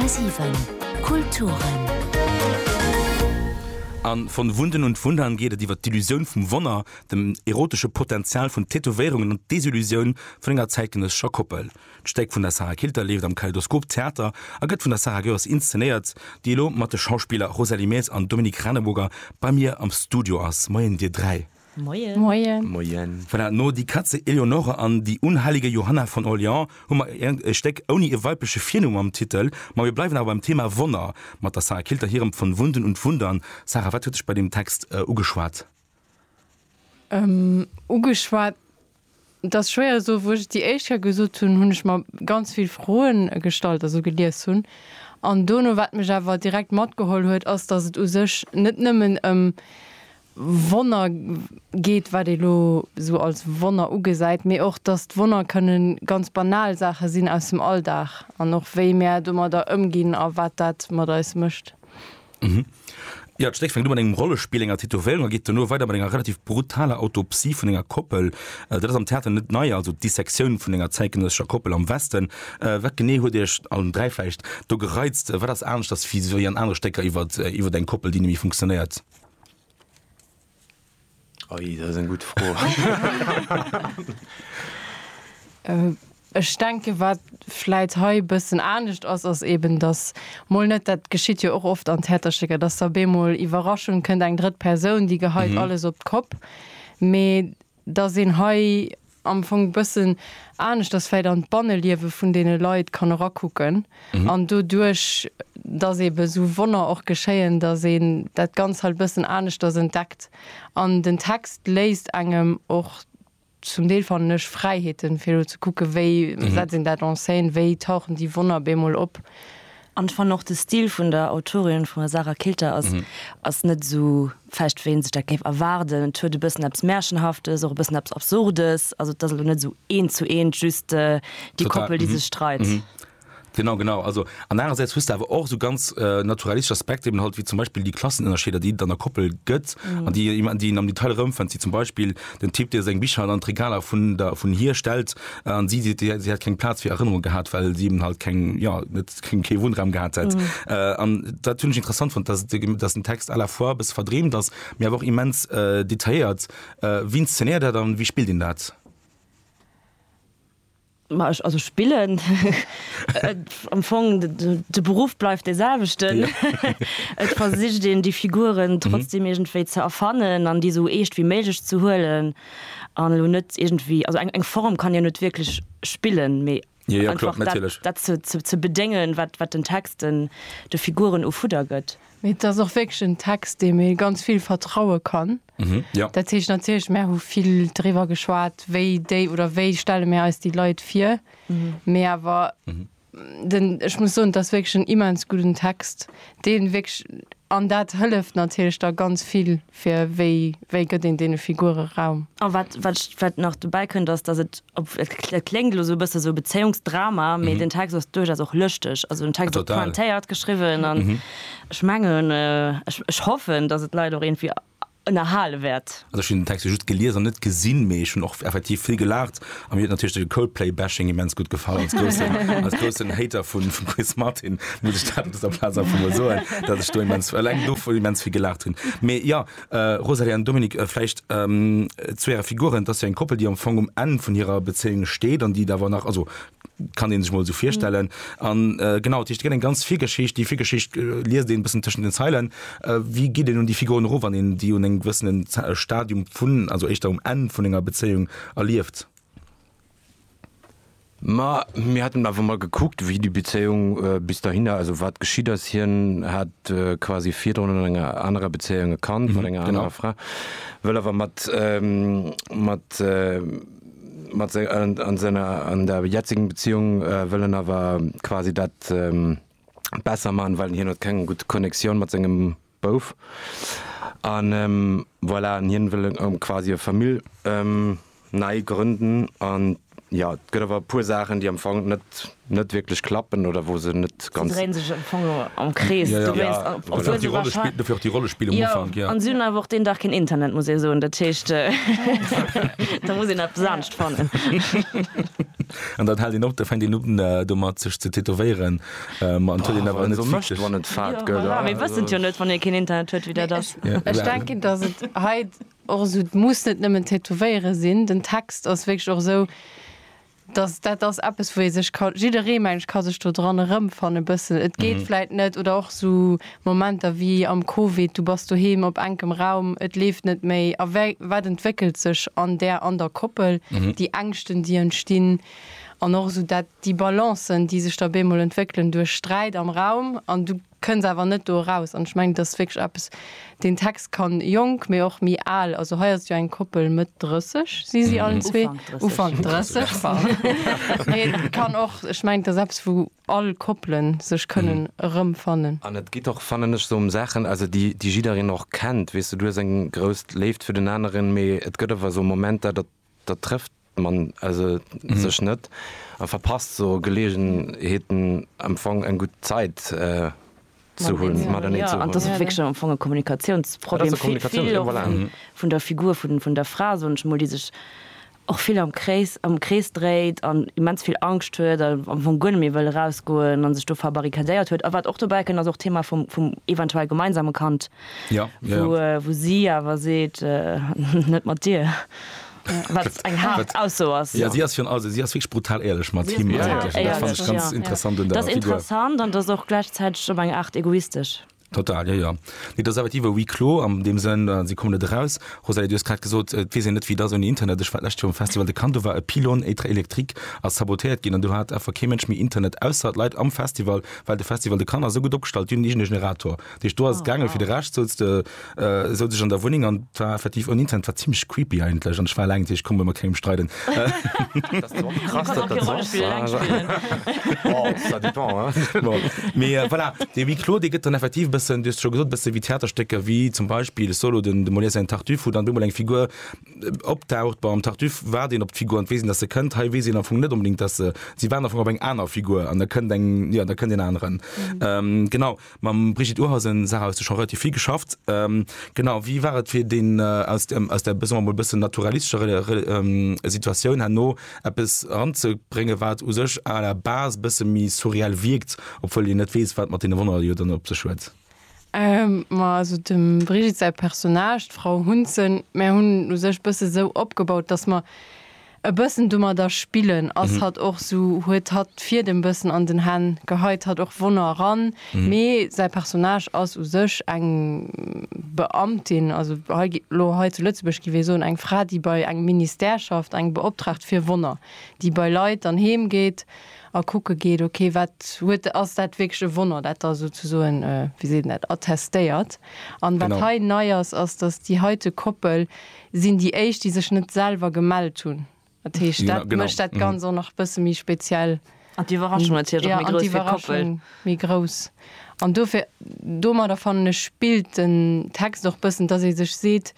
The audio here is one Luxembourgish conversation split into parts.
10,7 Kulturen. A Von Wunden und Wundern geet et iwwer d'Illusioun vum Wonner, den erotesche Potenzial vun Tätowéierungen an d'Desillusioun vun enger zäitgenëssescher Koppel. D'Stéck vun der Sarah Kilter leeft am Kaleidoskop Theater a gëtt vun der Sarah Goers inszenéiert, déi elo mat de Schauspiller Rosalie Maes an Dominique Raneburger bei mir am Studio ass. Moien, Dir dräi. Moien. Moien. Moien. Voilà, no Die Katze Eleonore an Die unheilige Johanna von Orléans hu mer iergend e Stéck ouni e weibleche Virnumm am Titel. Ma mir bleiwen awer beim Thema Wonner mat der Sarah Kilter hirem Von Wunden und Wundern. Sarah, wat huet dech bei deem Text ugeschwat? Ugeschwat Et ass schwéier esou. Wou ech déi éischt Kéier gesot hunn, hunn ech mer ganz vill Froen gestallt, also gelies hunn. An dono, wat mech awer direkt matgeholl huet, ass, dass et u sech net nëmmen ëm Wonner geet, wat ee lo esou als Wonner ugesäit, mee och, dass d'Wonner kënne ganz banal Saache sinn aus dem Alldag an och wéi mär domadder ëmginn a wat dat mat eis mécht. Mhm. Ja, d'Stéck fänkt un mat engem Rollespill, enger Tätowéierung a geet duerno weider mat enger relativ brutaler Autopsie vun enger Koppel. Äh, dat ass am Theater net nei, also d'Dissektioun vun enger zäitgenëssescher Koppel am Westen. Äh, wat genee huet Iech, allen dräi vläicht, do gereizt? Wat ass aneschters wéi an anere Stécker iwwer, iwwer eng Koppel, déi net méi funktionéiert? Oi, dat ass eng gutt Fro. Ech denken, wat vläit hei e bëssen anescht ass, ass eeben, datt mol net, dat geschitt jo och oft an Theaterstécker, datt da op eemol, Iwwerraschung, kënnt eng drëtt Persoun, déi geheit alles op d'Kopp, mee dass een hei am Fong bëssen aneschters vläit an d'Banneliewe vun deene Leit kann erakucken an doduerch, dass eebe sou Wonner och geschéien, dass een dat Ganzt halt bëssen aneschters entdeckt. An den Text léisst engem och zum Deel, fannen ech, Fräiheeten, fir elo ze kucke wéi setzt een dat en scène, wéi tauchen déi Wonner bemol op. An fan och de Stil vun der Autorin, vun der Sarah Kilter ass ass net esou fest wéi een sech dat géif erwaarden. Et huet e bëssen eppes Märchenhaftes, och e bëssen eppes Absurdes. Also et ass elo net esou eent zu eent just déi Koppel déi sech streit. Genau genau also an anerersäits hues de awer och esou ganz naturalistesch Aspekter eben halt wéi zum Beispill déi Klassenënnerscheeder déi et an der Koppel gëtt an déi een am Detail erëmfënnt wéi zum Beispill den Typ, dee seng Bicher an d'Regaler vun der, vun hir stellt, an si seet, si hätt keng Plaz fir Erënnerunge gehat, well si eben halt keng, jo, net, keng, kee Wunnraum gehat hätt. An dat hunn ech interessant fonnt, dass, dass den Text à la fois e bësse verdreemt ass, mee awer och immens detailléiert. Wie inszenéiert dat an wéi spillt een dat? Ma ech, also spillen, am Fong, de Beruff bleift dee selwechten. Et versicht een déi Figuren trotzdeem iergendwéi ze erfannen an déi esou eescht wéi méiglech ze huelen an elo net iergendwéi, also eng Form kann jo net wierklech spillen, mee einfach dat ze bedéngen, wat den Text de Figuren u Fudder gëtt. Mee et ass och wierklech en Text, deem ee ganz vill vertraue kann, Mhm, ja. Dat heescht natierlech, mär hu vill driwwer geschwat, wéi déi oder wéi stelle mir eis déi Leit vir. Mee awer den, ech muss soen, dat ass wierklech en immens gudden Text, deen wierklech, an dat hëlleft natierlech da ganz vill, fir wéi, wéi gëtt een deene Figure Raum. A wat, wat ech, wat nach dobäi kënnt, ass, dass et, ob, et kl, et kléngt elo esou e bësse sou Bezéiungsdrama, mee den Text ass duerchaus och lëschteg. Also den Text ass Total. pointéiert geschriwwen an Ech mengen, ech hoffen, datt et d'Leit och iergendwéi ënnerhale wäert. Also ech hunn den Text jo just gelies an net gesinn, mee ech hunn och effektiv vill gelaacht a mir huet natierlech de Coldplay-Bashing immens gutt gefall. Als groussen, als groussen Hater vu vum Chris Martin muss ech dat op dëser Plaz einfach emol soen, datt ech do immens, eleng dovun, immens vill gelaacht hunn. Mee jo, Rosalie an Dominik, vläicht zu äre Figuren, et ass jo eng Koppel, déi am Fong um Enn vun hirer Bezéiung steet an déi et awer nach, also kann een sech mol sou virstellen an äh, genau dat heescht, et gëtt eng ganz vill Geschicht, déi vill Geschicht äh, liest een bëssen tëschent den Zeilen. Äh, wéi geet een un déi Figuren erof, wann een déi un engem gewëssenen Ze- äh, Stadium vun, also éischter um Enn vun enger Bezéiung erlieft? Ma mir hatten awer mal gekuckt, wéi déi Bezéiung äh, bis dahinner, also wat geschitt ass. Hien hat äh, quasi virdrun an enger anerer Bezéiung e Kand mat enger genau. anerer Fra, wëll awer mat ähm, mat äh, mat se an an senger an der jetzigen Beziehung äh, wëll en awer quasi dat ähm, besser man, well hien huet keng gutt Connectioun mat sengem Bouf an ähm, voilà an hien wëll ähm, quasi e Famill ähm, nei grënden an ja et gëtt awer e puer Saachen déi am Fong net net wierklech klappen oder wou se net ganz. Se dréien sech am Fong am Krees. Ja, ja. Obwuel se wahrscheinlech. Dofir och déi Rollespill am Ufank, ja. Jo, an se hunn awer och deen Dag keen Internet, muss ee soen. Dat heescht, da muss een eppes anescht fannen. An dann hält een op, da fänkt een un domat, sech ze tätowéieren. Ma et huet een awer net vill Stéch. Wann et fad gëtt. Jo, voilà, mee wëssen jo net, wann ee keen Internet huet, wéi dat ass. Ech denken, dass et hei och esou, et muss net nëmmen Tätowéiere sinn. Den Text ass wierklech och esou, dass dat ass eppes wou ee sech ka, jidderee mengen ech ka sech do dran erëmfannen e bëssen, et geet vläit net oder och esou Momenter wéi am Covid, du bass doheem op enkem Raum, et leeft net méi a wé wat entwéckelt sech an där an der Koppel, déi Ängschten déi entstinn an och esou dat déi Balancen déi sech da bemol entwéckelen duerch Sträit am Raum an du kënn se awer net do eraus. An ech mengen, et ass wierklech eppes, deen Text kann jonk, mee och méi al, also hei ass et jo eng Koppel, Mëtt 30 si si allen zwee, Ufank 30, pardon, mee et kann och, ech mengen, et ass eppes, wou all Koppele sech kënnen erëmfannen. An et geet och, fannen ech, sou ëm Saachen, also déi, déi jiddereen och kennt, weess de, du hues eng grouss Léift fir den aneren, mee et gëtt awer esou Momenter, datt Da trëfft man se sech net a verpasst sou Geleegenheeten am Fong eng gutt Zäit ze hunn matenee. Jo, an et ass och wierklech am Fong e Kommunikatiounsproblem, vill och vun der Figur vun der Fra, soen ech mol, déi sech och vill am Krees, am Krees dréit an immens vill Angscht huet a am Fong guer net méi wëll erausgoen an sech do verbarrikadéiert huet. A wat och dobäi kënnt, ass och d'Thema vum eventuell gemeinsame Kand. wou si awer seet, net mat dir, wat eng haart Ausso ass. Jo, si ass virun allem, si ass wierklech brutal éierlech mat him. Dat fannen ech ganz interessant un der Figur. Dat ass interessant an dat ass och gläichzäiteg op eng Aart egoistesch. Total, jo, jo. Nee, dat ass effektiv e Huis clos an deem Sënn, si kommen net eraus. Rosalie, du hues grad gesot, et weess een net, wéi et ass ouni Internet. Ech war d'lescht Joer um Festival de Cannes, do war e Pylône électrique ass sabotéiert ginn an do hat einfach kee Mënsch méi Internet, ausser d'Leit am Festival, well de Festival de Cannes ass esou gutt opgestallt, déi hunn iergend e Generator. Déi Stor ass gaangen, fir de Rescht souz de, äh, souz ech an der Wunneng an et war effektiv ouni Internet, war zimlech creepy eigentlech an ech war eleng, ech konnt mer mat kengem streiden. Dat ass och krass, datt dat esou ass. Oh, ça dépend, hein. Bon, mee voilà, dee Huis clos, dee gëtt dann effektiv e bëssen, du hues et scho gesot, e bësse wéi Theaterstécker, wéi zum Beispill Solo, de Molière säin Tartuffe, wou dann op eemol eng Figur opdaucht. Bei am Tartuffe waart een op d'Figur an et weess een, datt se kënnt. Hei weess een am Fong net onbedéngt, datt se, si waarden am Fong op eng aner Figur an da kënnt eng, jo, da kënnt een aneren. Genau, Mam Brigitte Urhausen, Sarah, hues de scho relativ vill geschafft. Genau, wéi war et fir deen, aus der, aus der, soe mer emol, e bëssen naturalistescher Situatioun herno eppes eranzebréngen, wat u sech à la base e bësse méi surreal wierkt, obwuel een net weess, wat mat deene Wonner jo dann op sech huet? Ma also dem Brigitte säi Personnage, d'Frau Hunsen, mär hunn en u sech e bësse sou opgebaut, dass mer E bëssen domadder spillen ass hatt och sou, huet hatt d'Fiedem bëssen an den Hänn, geheit hatt och Wonner eran, mee säi Personnage ass u sech eng Beamtin, also hei gi lo, hei zu Lëtzebuerg gi wéi soen, eng Fra, déi bei engem Ministère schafft, eng Beoptraagt fir Wonner, déi bei Leit dann heem geet a kucke geet, ok, wat huet, ass dat wierklech e Wonner, dat da sou ze soen, wéi seet een dat, attestéiert. An wat hei nei ass, ass, datt déi heite Koppel Sinn déi éischt déi sech net selwer gemellt hunn. Dat heescht dat mécht dat ganz och nach e bësse méi speziell. An d'Iwwerraschung natierlech och méi grouss fir d'Koppel. Méi grouss an dofir domadder fannen ech spillt den Text och bëssen, dass ee sech seet,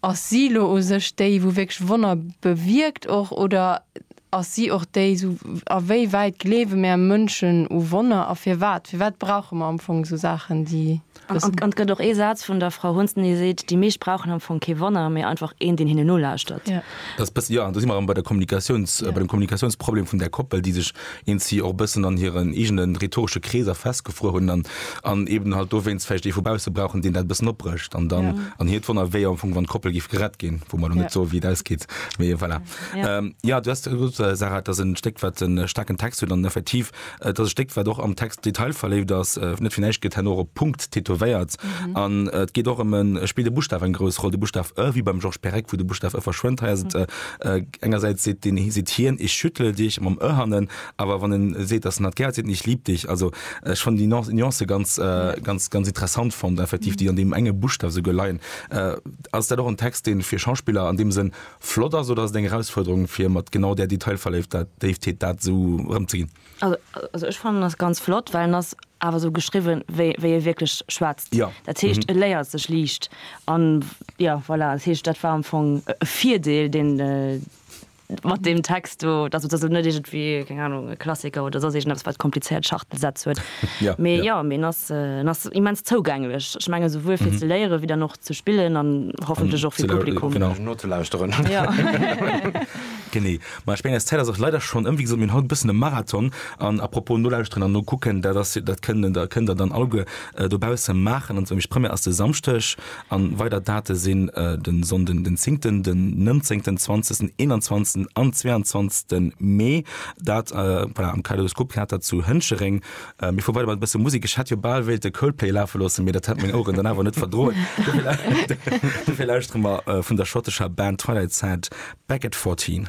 ass si lo u sech déi wou wierklech Wonner bewierkt och oder ass si och déi sou a wéi wäit gleewe mär Mënschen u Wonner a firwat? Firwat brauche mer am Fong sou Saachen déi. An et gëtt och ee Saz vun der Frau Hunsten, déi seet, déi meescht brauchen am Fong kee Wonner, mee einfach een, deen hinnen nolauschtert. Dat ass e bëssen, jo, an do si mer erëm bei der Kommunikatioun, bei dem Kommunikatiounsproblem vun där Koppel, déi sech eenzi och e bëssen an hiren eegene rhetoresche Kreeser festgefruer hunn an eben halt dowéinst vläicht ee vu bausse brauchen, deen dat e bëssen opbrécht an dann an hiert wonnert, wéi am Fong, wann d'Koppel géif gerett ginn, wou mer elo net soe wéi et ausgeet, mee voilà. Jo, du hues gesot, Sarah, et ass e Stéck, wat e staarken Text huet an effektiv Et ass e Stéck, wat och am Text detailverléift ass. Net fir näischt gëtt herno och e Punkt tätowéiert. An et geet och ëm e, et spillt e Buschtaf eng grouss Roll, de Buschtaf e, wéi beim Georges Perec, wou de Buschtaf e verschwënnt. Hei ass et, engersäits seet deen, seet hien, Ich schüttle dich, mam e hannen, awer wann e seet, dass en hatt gär huet, seet en, Ich lieb dich. Also ech fannen déi Nuance ganz, ganz, ganz interessant fonnt, effektiv, déi an deem enge Buschtaf esouguer leien. Ass dat och en Text, dee fir Schauspiller an deem Sënn Flott ass oder ass et eng Erausfuerderung fir mat genau där Detailverléiftheet dat esou erëm ze ginn? Also ech fannen en ass ganz flott, well en ass awer esou geschriwwen wéi wéi ee wierklech schwätzt. Dat heescht e léiert sech liicht an. Jo voilà, dat heescht dat war am Fong e Virdeel deen mat deem Text do, dass dass et net iergendwéi keng Ahnung e Klassiker oder soss iergendeppes wat komplizéiert Schachtelsätz huet. Mee jo, mee en ass en ass immens zougänglech. Ech menge souwuel fir ze léiere wéi dann och ze spillen an hoffentlech och fir Publikum. Fir nozelauschteren. Genee. Ma ech mengen eis Zäit ass och leider schonn ëm. Wéi gesot, mir hunn haut e bëssen e Marathon. An à propos nolauschteren an nokucken, dat ass, dat kënnt der, kënnt der dann alleguer dobausse maachen. An zwar nämlech d'Première ass de Samschdeg an weider Date sinn de Sonnden den zéngten, den nënzéngten, zwanzegsten, eenanzwanzegsten an zweeanzwanzegste Mee. Dat, voilà, am Kaleidoskop Theater zu Hënchereng. Mir fuere weider mat e bësse Musek. Ech hätt jo bal wéilt de Coldplay lafe loossen, mee dat hätt meng Oueren dann awer net verdroen. Dofir lauschtere mer vun der schottescher Band Twilight Sad Back at 14.